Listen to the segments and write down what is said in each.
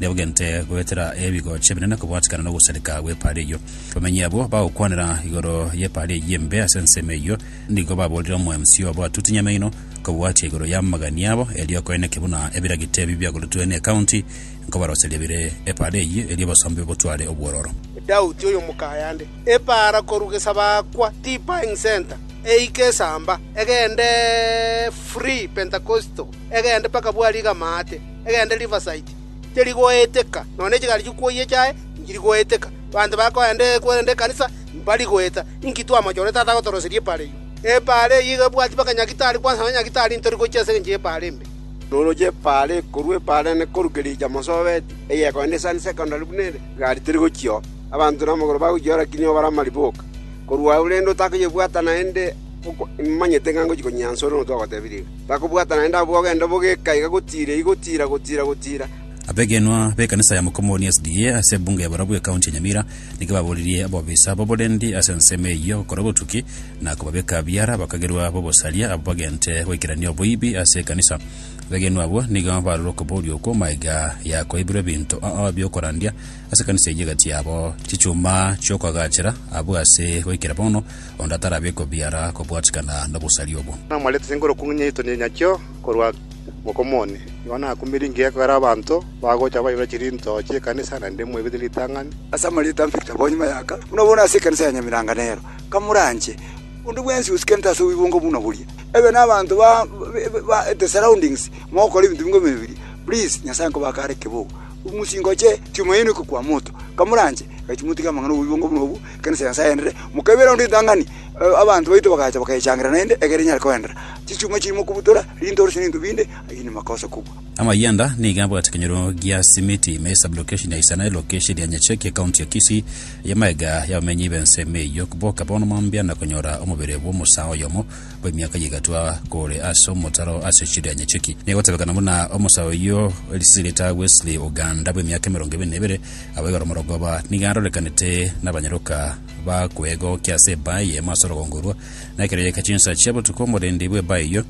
Nebagente goetera ebigocha ebinene kobwatikana nogosareka gw'epaari eyio. Abamenyi abwo bagokwanera igoro y'epaari eyio embe ase ensemo eyio, nigo baboorire omoemsi obo atuti nyamaino kobwatia igoro y'amagani abo, erio koeneke buna ebiragita ebi biagoretwe n'ecounty nkobaroseria bire epaari eyio, erio obosombe botware obwororo. Edouti oyo mokayande epaara korwa Gesabakwa Tea Buying Centre eike Esamba egende Free Pentecostal. egende mpaka bwari Gamate, egende Rivasaiti, teri goeteka, nonya ne chigari chikwoyia chiaye inchiri goeteka. Abanto bakoenda korende ekanisa imbari goeta. Inki twamachore Tata agotoroseria epaara eyio? Epaara eyio iga ebwati mpaka nyagitari, kwansa nonya nyagitari intori gochia ase engencho y'epaara embe. Noroche epaara eye korwa epaara ene koruke riicha Mosoveti, egekoenda esani secondary buna ere, egari teri gochia oo. Abanto namagoro bagochia oo lakini oo bare amariboka. Korwa agwo rende otakoyebwata naende, oko, imanyete ng'a ngochia konyeansa ore nonya twagotebirie iga. Bakobwata naende abwo bagende bogeka iga gotiira, iga gotiira, gotiira, gotiira. Abegenwa b'ekanisa ya Mukomooni SDA ase ebunge ya barabwo ekaunti ya Nyamira nigo baboririe abofisa b'oborendi ase ensemo eyio gokora obotuki na kobabeka biara bakagerwa b'obosaria abwo bagente goikerania oboibi ase ekanisa. Abegenwa abwo nigo barorwe okoboria okwo magega ya koibirwa ebinto bi'okorandia ase ekanisa eyio egati yabo chichuma chi'okoagachera abwo ase goikera bono onde atarabe kobiara kobwatikana nobosari obwo. Namwarete ase enkorokio ng'a nyaitondie nyakio korwa moko mone. Igo nakumire ingiya ekogera abanto bagocha bairora chirinto chi'ekanisa, naende mwaigwete ritang'ani. Ase amarieta Victor Bonyi Mayaka, buna bono ase ekanisa ya Nyamiranga nero, Kamuranche, onde bwensi osikerete ase obibongo buna boria, ebe nabanto ba ba the surroundings mogokora ebinto bingo bime biria, please Nyasaye nkobake are kebogo, omosinga oche Tumaini oke kwa moto, Kamuranche, gaki motige amang'ana obibongo buna obwo, Ekeene ase Nyasae aenderere, mokaibera onde ritang'ani, abanto baito bagacha bakayechangereria naende, egere enyare koenderera. Chisiuma chiri mokobutora, rintoro chiri nebinto binde, ayio nemakosa kobua. Amayanda nigo abwate ekenyoro gia Simiti me esablokesheni ya Isana, elokesheni ya Nyacheke, ekaunti ya Kisii, y'amaega y'abamenyi b'ense ime eyio. Boka bono mambia na konyora omobere bw'omosaa oyomo bw'emiaka ye egatwa kore ase omotaro ase chiri ya Nyacheki. Negotebekana buna omosaa oyio risiriri rita Wesley Oganda bw'emiaka emerongo ebere na ebere Abaiga oromorongo aba nigo arorekanete nabanyaroka ba kwegokia ase ebaa eyemo ase orogongo orwo, na ekero yaika chinsa chia botuko omorendi bw'ebaa eyio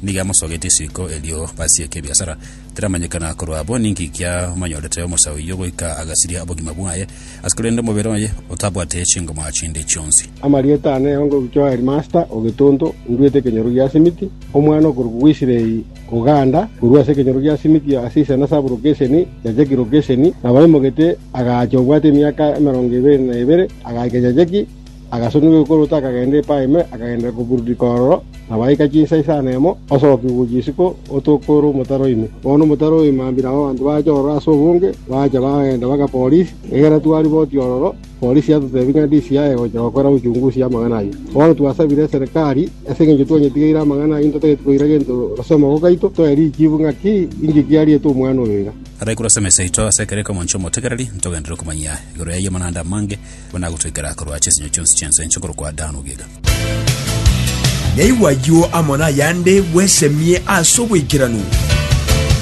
nigo amosogetie isiko erio basieke ebiasara. Teramanyekana korwa abwo ninki kiamonyorete omosa oyio goika agasiria obogima bwaye ase korende omobere oye otabwate chingoma chinde chionsi. Amarieta ane onde ogochwa Headmaster o Getonto, Nduete Kenyoro Giasimiti, Omwana okorokwa Israel, Koganda korwa ase ekenyoro gia Simiti ase isana Saburo Gesheni, Jajeki Rogesheni, na baimogete agaacha obwate emiaka emerongo ebere na ebere, agaika Jajeki, agasoniwa egokoroto akagenda Epaime, akagendera kobururika ororo, na baika chinsa isano emo, osogokigwa gochia isiko, otoka ore omotaro ime. Bono omotaro oime mambia nabo abanto baacha ororo ase obonge, baacha bagenda bagaporisia, egera twari boti ororo. Polisi yatoteebia ng'a ndisi yaye gocha gokora uchungusi y'amang'ana ayio. Bono twasabire eserekari, ase engencho twanyetigeire amang'ana ayio ntatageti koira gento ase omoko gaito, toe richibu ng'a ki inki kiariete omwana oyo iga. Abaikuru ase emesa yaito ase ekero ekemoncho omotegereri, ntogenderere komanyia igoro y'ayio amanande amange, buna agotoikera korwa ase ensinyo chionsi chi'ense enche korokwa Adani ogiga. Naigwa ayio amo nayande bwesemie ase oboikeranu.